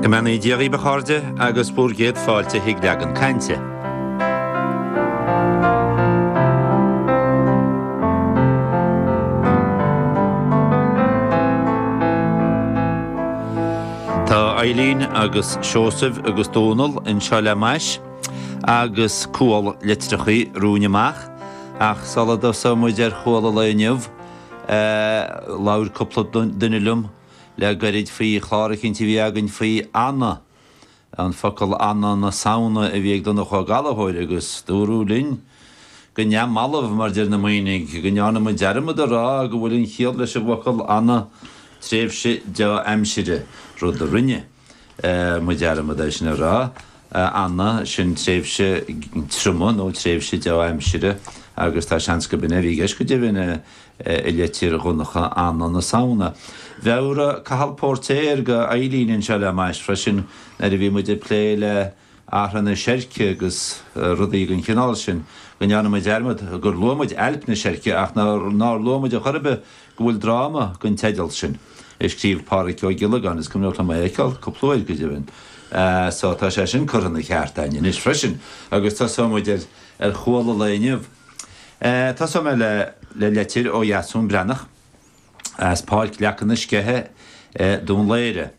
Go mbeannaí Dia dhíbh, a chairde, agus bhur gcéad fáilte chuig Leagan Cainte. Tá Eileen agus Seosamh agus Dónal anseo le m'ais agus cual litreachaí romhainn amach ach sula dtosóidh muid ar chual an lae inniu labhair cúpla duine liom Le gairid faoi chlár eicínt a bhí againn faoi Anna, an focal Anna na Samhna a bhí ag Donncha Ó Gallchóir agus dúradh linn, go neamhbhalbh mar deir na Muimhnigh, go ndearna muid dearmad a rá go bhfuil aon chiall leis an bhfocal Anna, tréimhse dea-aimsire, rud a rinne. muid dearmad é sin a rá, anna, sin tréimhse triomaigh nó tréimhse dea-aimsire agus tá seans gurb in é a bhí i gceist go deimhin i litir Dhonncha Anna na Samhna. Mheabhraigh Cathal Póirtéir d'Eileen anseo le m'ais freisin nuair a bhí muid ag plé le Arthaí seirce agus rudaí den chineál sin, go ndearna muid dearmad gur luaigh muid Ailp na Seirce ach nár luaigh muid ar chor ar bith go bhfuil dráma den teideal sin, a scríobh Pádhraic Ó Giollagáin, is cuimhneach liom é a fheiceáil cúpla uair, go deimhin, so tá sé sin curtha ina cheart againn anois freisin agus tosóidh muid ar chual an lae inniu. Tosóidh mé le litir ó Dheasún Breathnach as Páirc Leaca na Sceiche i nDún Laoghaire.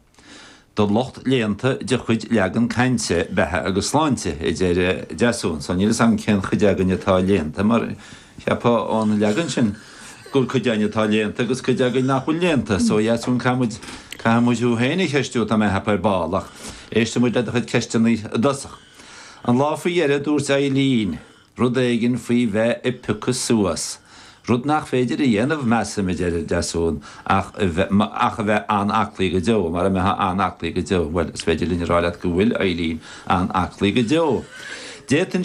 do lucht léannta de chuid Leagan Cainte, Beatha agus Sláinte, a deir Deasún. So, níl 'fhios agam cén chuid againn atá léannta mar cheapfá ón leagan sin gur cuid againn atá léannta agus cuid againn nach bhfuil léannta. So, a Dheasúin, caithfidh muid, caithfidh muid thú féin a cheistiú atá mé a cheapadh ar ball ach éistfidh muid le do chuid ceisteanna i dtosach. An lá faoi dheireadh, dúirt Eileen. Rud éigin faoi bheith ag piocadh suas, rud nach féidir a dhéanamh, measaim, a deir Deasún, ach a bheith, ach a bheith an-aclaí go deo, mara mbeithfeá an-aclaí go deo, bhuel, is féidir linn a rá leat go bhfuil Eileen an-aclaí go deo. D'fhéadfá